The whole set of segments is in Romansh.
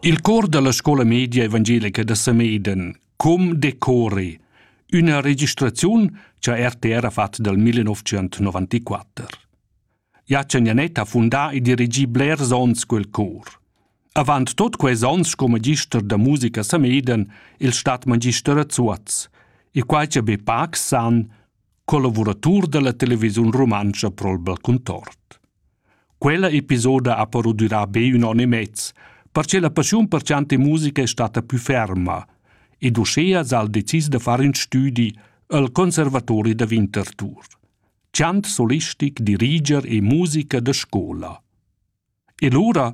Il cor dalla scola media evangelica da Samedan, Com decori, üna registraziun cha RTR ha fat dal 1994. Jacen Janet ha fundà e dirigì blers ons quel cor. Avant tot quels ons sco magister da musica Samedan il stadtmagister a Zuoz, e quai cha be pac san, collavuratur da la televisiun rumantscha pro'l Balcuntort. Quella episoda ha però durà be ün on e mez, perche la paschiun per chantar musica è stata pü ferma ed uschea s'ha el decis da far ün stüdi al Conservatori da Winterthur. Chant solistic, diriger e musica da scoula. E lura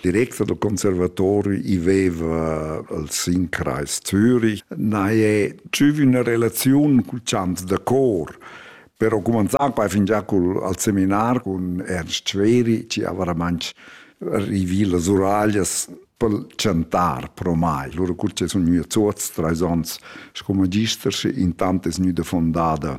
director del conservatori iveva al Sinkreis Zürich, nai è tschüvi una relazione cul chant da cor. Però cumanzar qua fingià col, al seminar con Ernst Schweri, ci avaramanch rivì las uraglias per chantar pro mai. Loro curce sun gnü a Zuoz, trais ons, sco magister, intant es gnüda fondada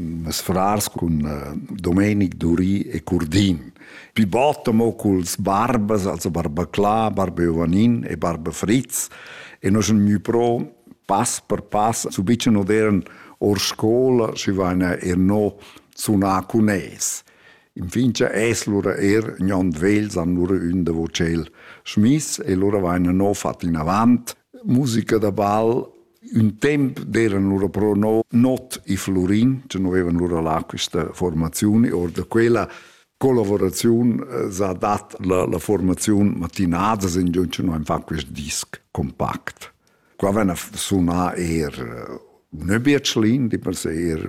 Mes frars cun eh, Domenic Duri e Curdin. Pi bot amo culs barbas, also barba Cla, barba Jovanin e barba Fritz. E noi sun gnü pro pass per pass, su bicen odern or scola, schi vaina er no sunà cun es. Infin cha es lura er gnond vels han lura ün da vocel schmiss e lura vaina no fat inavant musica da ball Ün temp d'eran lura però no not i Flurin, che nu vevan lura là quista formaziun e or da quella collaboraziun eh, s'ha dat la, la formaziun matinadas in giun che noi am fan quist disc compact. Qua ven a sunar eir eh, un bietschlin, di per se eir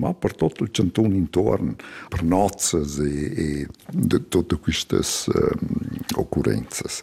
ma per tot il cantun intorn, per nozzas e, e de, tutte quistas um, occurrenzas.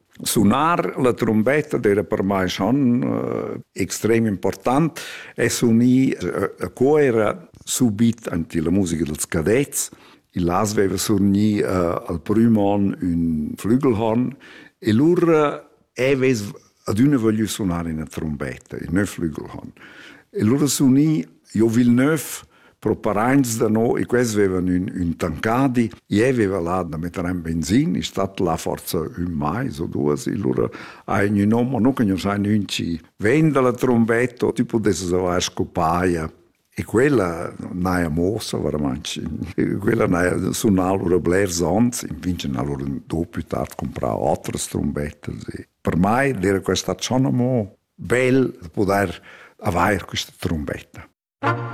Sunar la trumbetta d'era per mai schon eh, extrem important e sunì eh, co era subit anti la musica dels cadets. Il las aveva surni uh, al prim on un flügelhorn e lur eves ad una voglio suonare una trombetta, il neuf flügelhorn. E lur sunì Jo Villeneuve Pro paraints da no, e quels vevan ün, ün tancadi, ie veva là da metter en benzin, è stat là forza ün mais o duas, e lura ha ün hom, o no conosce ün chi ven dalla trombetta, o ti pudesses avair scopaia. E quella n'haja mossa veramente. Quella n'haja sunà lura blers onns, infine ha lura dopo tard comprato altre trombette. Per mai era questa schon amò bel poter avair questa trombetta.